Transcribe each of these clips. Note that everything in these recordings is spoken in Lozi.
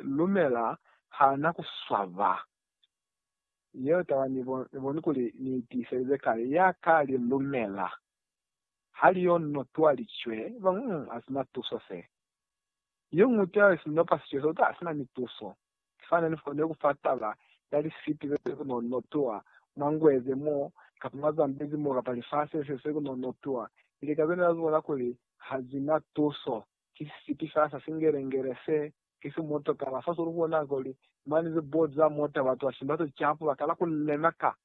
lumela ha na ku swaba. Yeo taba ni boni kuli ni i tiiselize kale, ya ka li lumela ha li yo no twa licwe, ba ngu, Ha si na tuso se. Yo ñwi taba ye si no pa sicwe so, uta, Ha si na ni tuso. Ki fani ni kone ku fa taba ya lisipi ze si kono no twa mwa ngwe ze mo, kapa mwa Zambezi mo, kapa lifasi le se si kono no twa, ili ka zone la zibona kuli ha zi na tuso. Ki sisipi sa sa singelengele se, ki si motokala. Fa sulu bona kuli mani ze bo za mota batu ba simba ze capu ba kala ku lema ka.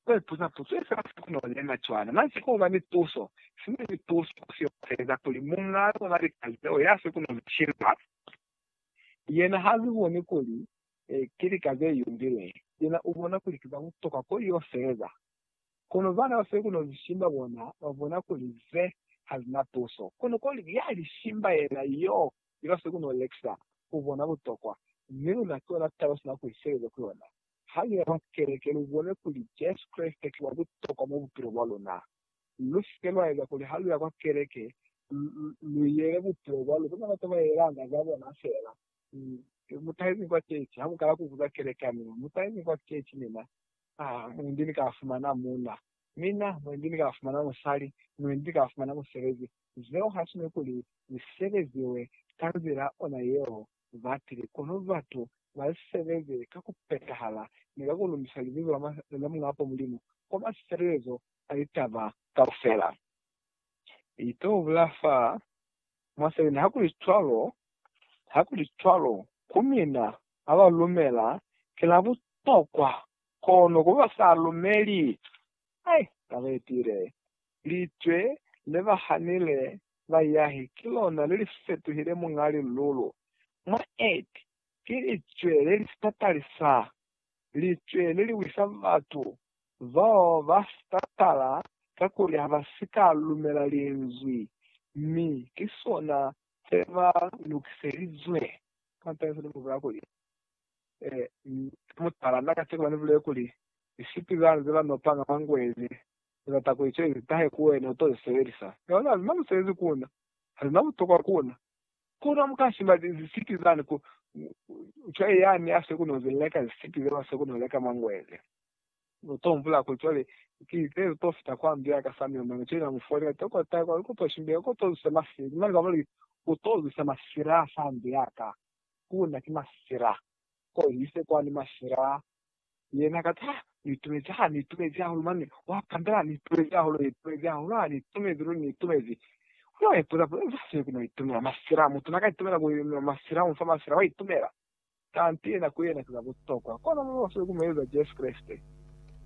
Ba ipuza puzo ye fela siku no lema cwana. Na si ku ba ni tuso. Sina ni tuso ku si oteza kuli munga luna lika zeo ya si ku no ze shimba. Yena ha zi boni kuli ki lika ze yumbilwe. Yena u bona kuli ki za butokwa ko y'o sebeza. Kono bana ba sekuno Lishimba bona ba bona kuli ze ha zi na tuso. Kono ko lika ya Lishimba yena y'o iba sekuno Lexia, u bona butokwa. Mi luna ki yona taba sina ku isebeza ku yona. Ha lu ya mwa keleke, lu bone kuli Jesu Kreste ki wa butokwa mwa bupilo bwa luna. Lu si ke lwa eza kuli ha lu ya kwa keleke, lu yele bupilo bwa luna. Bana bata ba yelanga za bona fela. Ki mutaizi kwa kechi, ha mukala kubuza kelekani, mutaizi kwa kechi mina, ah, mwendi ni ka fumana muuna, mina, mwendi ni ka fumana musali, mwendi ni ka fumana musebezi. Zeo ha si nekuli zi sebeziwe ka nzila ona yeo batili, kono batu ba zi sebeze ka ku petahala ni ka ku lumbisa libizo la Muñapo Mulimu kwa mafelelezo a litaba kaufela. Ito bula fa mwa 7 Hakuli cwalo, hakuli cwalo, ku mina baba lumela kila butokwa, kono ku ba sa lumeli, ai, na ba itile. Licwe le ba hanile bayahi ki lona le li fetuhile Muñ'a Lilulu. Mwa 8, ki licwe le li sa talisa licwe le li wisa batu bao ba sa tala kakuli ha ba si ka lumela Linzwi, mi ki sona se ba lukiselizwe. Kampela se ni bulelako kuli, Ki mutala na kacenu ba ni bulele kuli, Lisipi zani ze ba nopanga mwa ngweze, ni bata kuli cwale li tahe ku wena, u to li sebelisa. Yona, li na musebezi ku na. Ha li na butokwa ku na. Kono mu ka sima zisipi zani ku cwae yani a siko no zi leka zisipi zeo a siko no leka mangwele. Lu to humbula kuli cwale ki ze lu to fita kwa ndu ya ka samio mane cwale na mu folela tokota kwa ku to shimbila ku to zwisa masila. Mane ba muli, U to zwisa masila fa ndu ya ka. Ku na ki masila. Ko hise kwani masila Yena ka za, Ni itumezi ha, ni itumezi hahulu mane, wa kandala, ni itumezi hahulu, ni itumezi hahulu ha, ni itumezi ruri, ni itumezi. Wena wa ipuza puza, Za sio ki no itumela masila, mutu na ka itumela ku nwa masila, u nfa masila, wa itumela? Kanti yena ku yena ki za butokwa. Kono mwa bafile ku mu eza Jesu Kreste.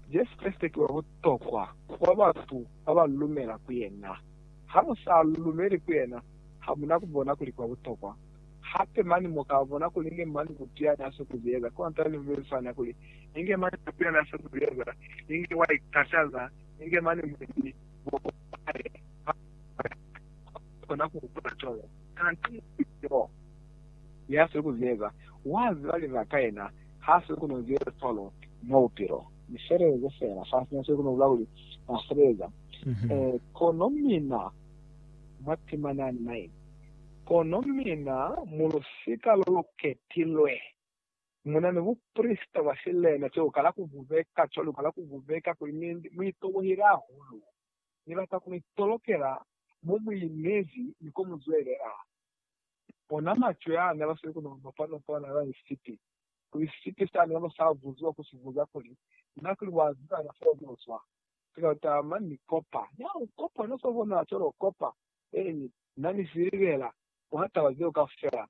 Jesu Kreste ki wa butokwa kwa batu ba ba lumela ku yena. Ha mu sa lumeli ku yena, ha mu na ku bona kuli ki wa butokwa. Hape mane mu ka bona kuli inge mane Bupia n'a si ku ze eza. Kont'a ni mu swana kuli, inge mane Bupia n'a si ku ze eza, inge wa ikataza, inge mane mulibi wo wa hae ha a ka kona ku hupula cwalo. Kanti mulibi yo ya si ku ze eza, wa ziba libaka yena h'a si ku no ze eza cwalo mwa bupilo. Ni feleleze fela fa sina se ku no bula kuli n'a sebeza. Ee, kono mina mwa temana ni mine, Kono mina, mu lusika lo lu ketilwe, mu na ni buprisita bwa silena ceo ka la ku bubeka cwalo ka la ku bubeka kuli mi mu itobohile hahulu. Ni bata ku mi tolokela mo mu inezi ni ko mu zwelela. Ona macwe a ne ba sweli ku no bapa no kona na ni sipi, kuli sipi sa ne ba sa buziwa ku si buza kuli, Na kuli wa ziba na fo ni uzwa? Sika utama ni kopa. Ya u kopa, na swa bona cwalo u kopa. Eeni, Na ni silibela mwa taba zeo kaufela,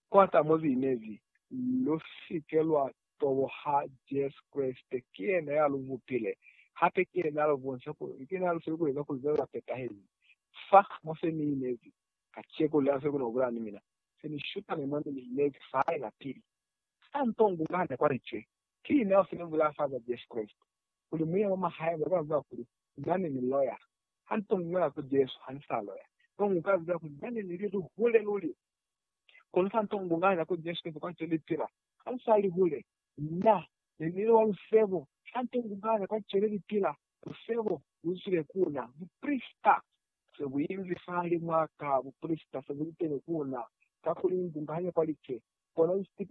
kwata mo Li inezi. Lu si ke lwa toboha Jesu Kreste. Ki Yena ya lu bupile, hape ki Yena ya lu bonisa kuli, ki Yena ya lu file kueza kuli zona za petahezi. Fa, mo se Ni inezi, kaceko, lena file kona kubulana ni mina. Se Ni shutane mo Ne Ni inezi fa hae lapili. Sa nto ngu nga hane kwa Licwe. Ki na fo ne bu lafaza Jesu Kreste, kuli muya wa mwa hae, baba ziba kuli na ne ni loya. Ha ni to ñola ku Jesu ha ni sa loya, kono ni ka ziba kuli na ne ni li lihule luli. Kono fa ni to bungaña ku Jesu Kreste kwa ze ni pila, ha ni sa li hule. Na ne ni li wa lusebo, ha ni to bungaña kwa ze ne ni pila, lusebo lu zwile ku na. Buprisita se bu inzi fahalimw'a ka, buprisita se bu li teni ku na, kakuli ni bungaña kwa lice, kono ni sitipi.